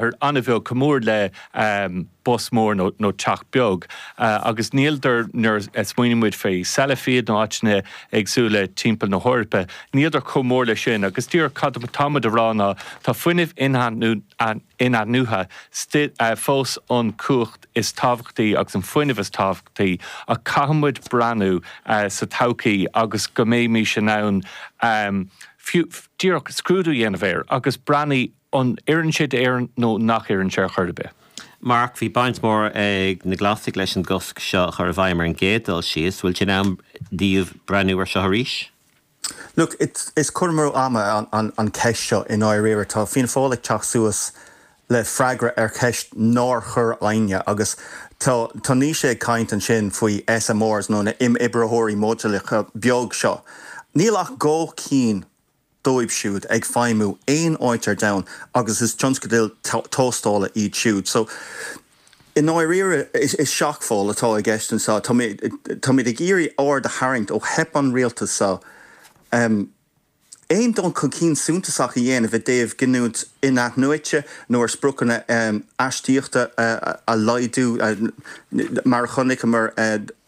an-bheag, chomh mór le bus mór nó teach beag, agus níltear, nuair a smaoiníonn muid faoi Sellafield nó áiteanna éagsúla timpeall na hEorpa, níltear chomh mór leis sin. Agus díreach cad atá muid a rá ná tá fuinneamh in-athnuaite fós an chumhacht is tábhachtaí agus an fuinneamh is tábhachtaí, ach caithfidh muid breathnú sa todhchaí agus go mbeimis in ann fiú díreach scrúdú a dhéanamh air agus breathnú, An oireann sé d'Éirinn nó nach oireann sé ar chor ar bith? Mark, Bhí baint mór ag na Glasaigh leis an gcosc seo a chur i bhfeidhm ar an gcéad dul síos. Bhfuil sé in am daoibh breathnú ar seo arís? Look, is cur amú ama an ceist seo i ndáiríre. Tá Fianna Fáil ag teacht suas le freagra ar cheist nár chuir éinne agus tá, tá Naoise ag caint ansin faoi SMRs nó na himoibreoirí modúlacha beag seo. Níl ach dhá cheann. díobh siúd ag feidhmiú aon áit ar domhan agus is tionscadail tástála iad siúd. So, i ndáiríre, is seachmall atá i gceist anseo. Táimid ag iarraidh aird a tharraingt ó theip an Rialtais seo aon dul chun cinn suntasach a dhéanamh i dtaobh giniúint in-athnuaite nó ar spriocanna astaíochta a laghdú, mar a chonaiceamar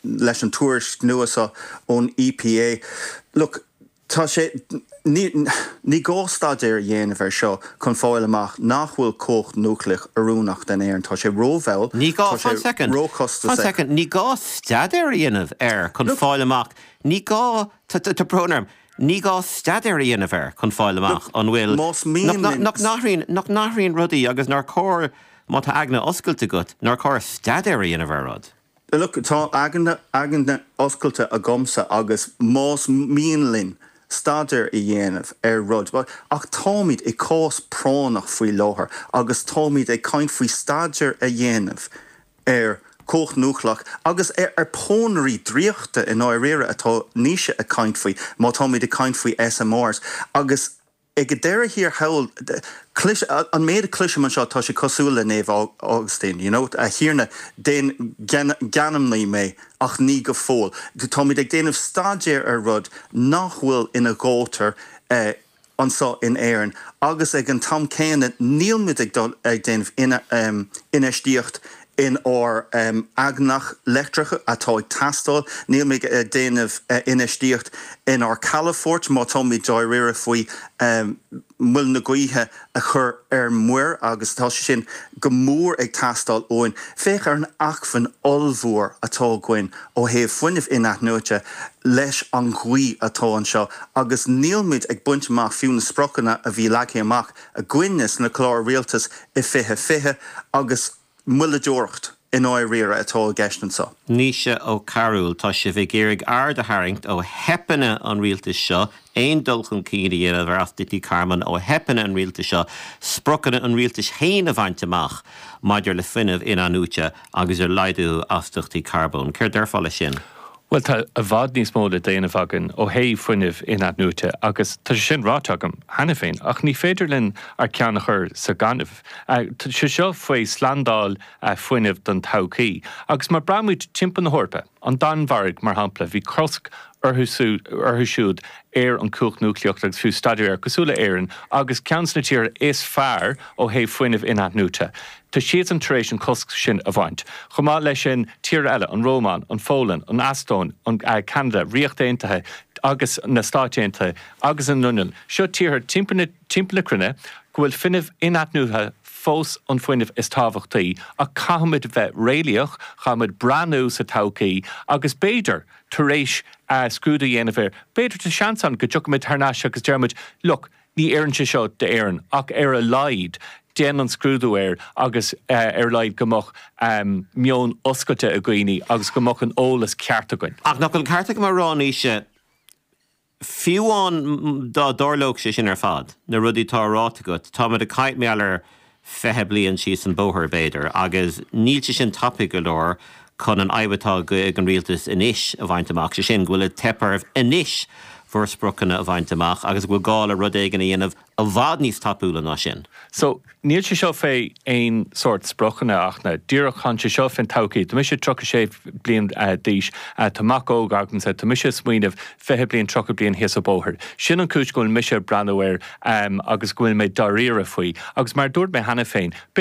leis an tuairisc nua seo ón EPA. Look. Tá sé, ní, ní gá staidéar a dhéanamh air seo chun fáil amach nach bhfuil cumhacht núicléach oiriúnach den Éirinn. Tá sé rómhall, Ní gá, tá sé fan soicind, fan róchostasach. soicind, ní gá staidéar a dhéanamh air chun Look. fáil amach, ní gá, tá, tá, tá brón orm, ní gá staidéar a dhéanamh air chun fáil Look, amach an bhfuil, más nach, mian nach, linn. nach n-athraíonn, nach n-athraíonn rudaí agus nár chóir, má tá aigne oscailte agat, nár chóir staidéar a dhéanamh ar rud. Look, tá aigne oscailte agamsa agus más mian linn staidéar a dhéanamh ar rud, bhuel, ach táimid i cás práinneach faoi láthair agus táimid ag caint faoi staidéar a dhéanamh ar chumhacht núicléach agus ar pónairí draíochta i ndáiríre atá Naoise ag caint faoi má táimid ag caint faoi SMRs agus Ag deireadh thiar thall, clois, an méid a chloisim anseo tá sé cosúil le Naomh Augustine, you know, A Thiarna, déan geanmnaí mé, ach ní go fóill. Táimid ag déanamh staidéir ar rud nach bhfuil indéanta anseo in Éirinn agus ag an t-am céanna níl muid ag déanamh infheistíocht in ár n-eangach leictreach atá ag teastáil. Níl muid ag déanamh infheistíocht in ár calafoirt má táimid dáiríre faoi muilte gaoithe a chur ar muir agus tá sé sin go mór ag teastáil uainn. Féach ar an acmhainn ollmhór atá againn ó thaobh fuinnimh in-athnuaite leis an ghaoth atá anseo agus nílimid ag baint amach fiú na spriocanna a bhí leagtha amach againne sa gclár rialtais i 2020 agus moilleadóireacht i ndáiríre atá i gceist anseo. Naoise Ó Cearúil, Tá sibh ag iarraidh aird a tharraingt ó theipeanna an rialtais seo, aon dul chun cinn a dhéanamh ar astaíochtaí carbóin ó theipeanna an rialtais seo, spriocanna an rialtais féin a bhaint amach maidir le fuinneamh in-athnuaite agus ar laghdú astaíochtaí carbóin. Céard déarfá leis sin? Bhuel, tá i bhfad níos mó le déanamh againn ó thaobh fuinnimh in-athnuaite agus tá sé sin ráite agam cheana féin ach ní féidir linn ár ceann a chur sa ghaineamh. Tá sé seo faoi slándáil fuinnimh don todhchaí agus má bhreathnaímid timpeall na hEorpa, an Danmhairg mar shampla, bhí cosc orthu siúd ar an chumhacht núicléach agus fiú staidéar air, cosúil le Éirinn agus ceann de na tíortha is fearr ó thaobh fuinnimh in-athnuaite. Tá siadsan tar éis an cosc sin a bhaint. Chomh maith leis sin, tíortha eile, an Rómáin, an Pholainn, an Eastóin, Ceanada, Ríocht Aontaithe agus na Stáit Aontaithe agus an Fhionlainn, seo tíortha timpeall na cruinne go bhfuil fuinneamh in-athnuaite fós an fuinneamh is tábhachtaí ach caithfimid bheith réalaíoch, caithfimid breathnú sa todhchaí agus b'fhéidir tar éis scrúdú a dhéanamh air, b'fhéidir tá seans ann go dtiocfaimid thar n-ais agus déarfaimid, look, Ní oireann sé seo d'Éirinn ach ar a laghad déan an scrúdú air agus ar a laghad go mbeadh meon oscailte ag daoine agus go mbeadh an t-eolas ceart againn. Ach nach bhfuil an ceart ag Máire, a Naoise, fiú amháin dá dtarlódh sé sin ar fad, na rudaí atá ráite agat, táimid ag caint, b'fhéidir, ar fiche bliain síos an bóthar, b'fhéidir, agus níl sé sin tapaidh go leor chun an fhadhb atá ag an Rialtas anois a bhaint amach, sé sin, go bhfuil ag teip oraibh anois bhur spriocanna a bhaint amach agus go bhfuil gá le rud éigin a dhéanamh i bhfad níos tapúla ná sin. So, níl sé seo fé aon sórt spriocanna amháin, díreach, tá sé seo fén todhchaí. Tá mise tríocha sé bliain d'aois, tá mac óg agamsa, tá mise ag smaoineamh fiche bliain, tríocha bliain síos an bóthar. Sin an chúis go bhfuil mise ag breathnú air agus go bhfuil mé dáiríre faoi. Agus mar a dúirt mé cheana féin, b'fhéidir